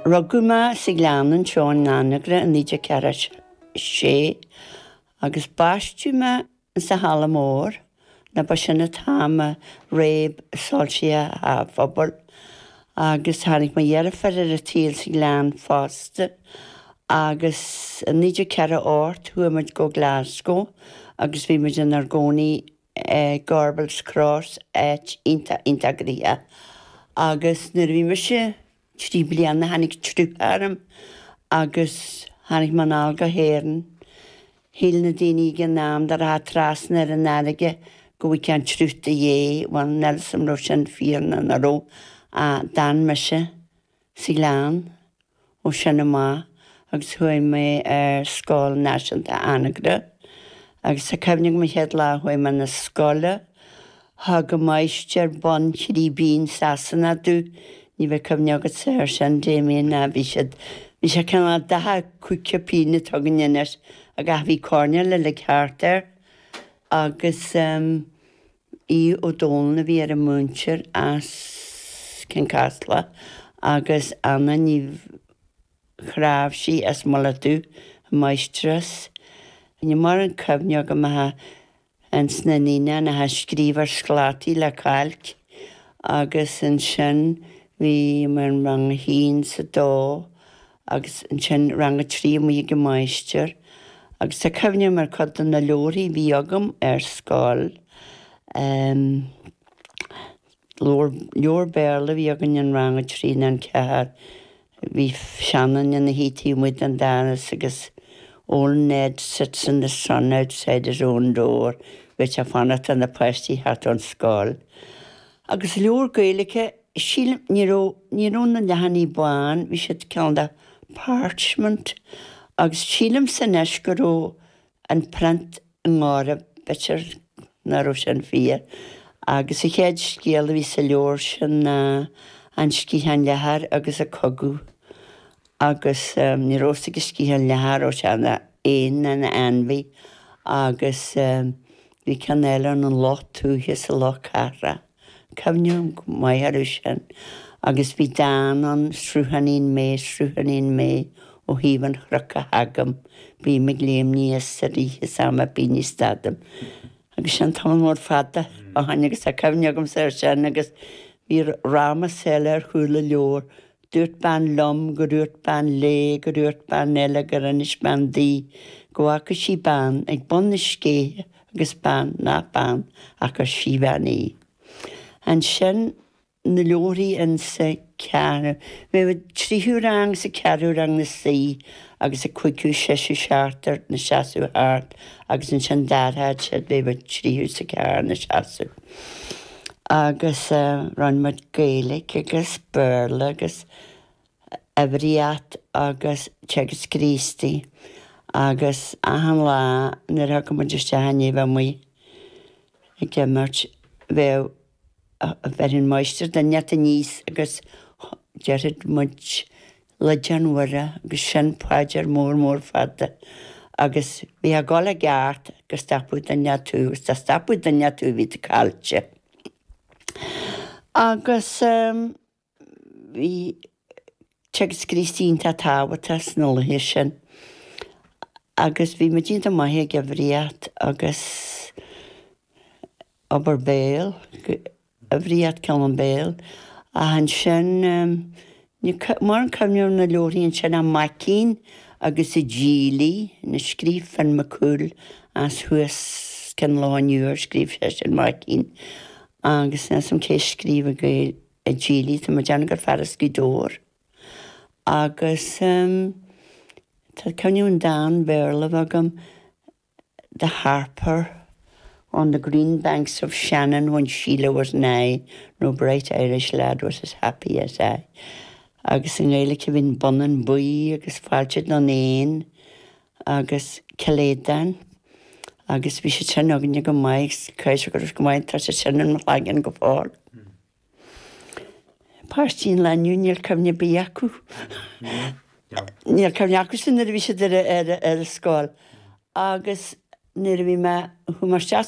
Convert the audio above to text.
Rugadh mé sa Ghleann, anseo in Anagaire i 1946 agus baisteadh mé sa Halla Mór, nó ba sin an t-am a réab soilsí teach an phobail agus tháinig mo dheirfiúr ar an tsaol sa Ghleann fosta agus i 1948 chuaigh muid go Glasgow agus bhí muid inár gcónaí Gorbals Cross áit iontach iontach gnoitheach agus nuair a bhí mise trí bliana tháinig triuch orm agus tháinig mé anall go hÉireann. Shíl na daoine ag an am dá rachfá trasna ar an fharraige go bhfágfá an triuch i do dhéidh, bhuel níl 's 'am an raibh sin fíor nó nach raibh ach d'fhan mise. sa Ghleann ó sin amach agus chuaigh mé ar Scoil Náisiúnta Anagaire agus tá cuimhne agam an chéad lá a chuaigh mé na scoile thug an máistir bonn trí pingine Sasanach domh, ní bheidh cuimhne agatsa ar sin Damien, ná bhí siad, bhí sé cineál dath an caoga pingin atá againn anois ach bhí coirnéal uilig thart air agus ehm. Aodh Ó Dónaill a bhí ar an múinteoir as Cionn Caslach agus Anna Ní Chnáimhsí as Mullach Dubh an máistreás. Níl mórán cuimhne agam a bheith ins na naíonáin ach ag scríobh ar sclátaí le cailc agus ansin bhí mé in rang a haon 's a dó agus ansin Rang a Trí amuigh ag an máistir agus tá cuimhne agam ar chuid de na leabharthaí a bhí agam ar scoil. Leabhar, leabhar Béarla a bhí againn in Rang a Trí nó a Ceathair. Bhí seanduine ina shuí taobh amuigh den doras agus Old Ned sits in the sun outside his own door, bhí sé ag fanacht leis na páistí a theacht ón scoil. Agus leabhar Gaeilge, sílim, ní raibh, ní raibh na leathanaigh bán, bhí siad cineál de parchment agus sílimse anois go raibh an print i ngáire, b'fhéidir nach raibh sin fíor. Agus an chéad scéal a bhí sa leabhar sin ná An Sciathán Leathair agus an cogadh agus ní raibh a fhios ag an sciathán leathair an raibh sé ina éan nó ina ainmhí agus bhí ceann eile ann an luch tuaithe is an luch cathrach, cuimhním go maith ar sin agus bhí dán ann, Sruthánín mé, sruthánín mé, ó thaobh an chnoic a thagaim, bím ag léimní is ag rith is am ar bith ní stadaim. Agus sin tamall mór fada ó shin agus tá cuimhne agamsa ar sin agus bhí ramás eile ar chúl an leabhair, Dúirt bean liom, go dúirt bean léi, go dúirt bean eile, gur inis bean di, go bhfaca sí bean ag bun na scéithe agus bean nach bean ach gur síbhean í. Ansin na leabharthaí in sa cheathrú, bheadh muid tríú rang is an ceathrú rang ina suí agus an cúigiú, séú, seachtú ina seasamh thart agus ansin d'athródh siad bheadh an tríú is an ceathrú ina seasamh. agus rinne muid Gaeilge agus Béarla agus Uimhríocht agus Teagasc Críostaí agus achan lá nuair a thiocfadh muid isteach ó bheith amuigh ag imirt bheadh bheireadh an máistir duine aníos agus déarfadh muid Liodán Mhuire agus sin paidir mór mór fada agus bhí a dhul i gceart go stopfadh duine inteacht thú agus dá stopfadh duine inteacht thú bhí tú caillte. Agus ehm bhí Teagasc Críostaí iontach tábhachtach sna laethe sin agus bhí muid iontach maith ag uimhríocht agus obair béil a bhriseadh ceann an béal ach ansin ní maireann cuimhne ar na leoraí ansin a Maicín agus a Gilly ina scríobh Finn McCool as thuas cionn lá inniu ar scríobh seisean Maicín agus ní as am cé scríobh a Gaeil a Gilly tá mé dearna gur fear as Gaoth Dobhair agus tá cuimhne an dán Béarla bheith agam the harper on the green banks of Shannon when Sheelah was nigh, no blithe Irish lad was as happy as I agus i nGaeilge bhí An Bonnán Buí agus Fáilte don Éan agus Cill Aodáin agus bhí siad sin againne go maith agus creid go raibh siad go maith, tá siad sin in mo chloigeann go fóill. Páistí an lae inniu níl cuimhne ar bith acu. Níl cuimhne acu sin nuair a bhí siad ar a ar a ar a scoil agus nuair a bhí mé a chuaigh mé isteach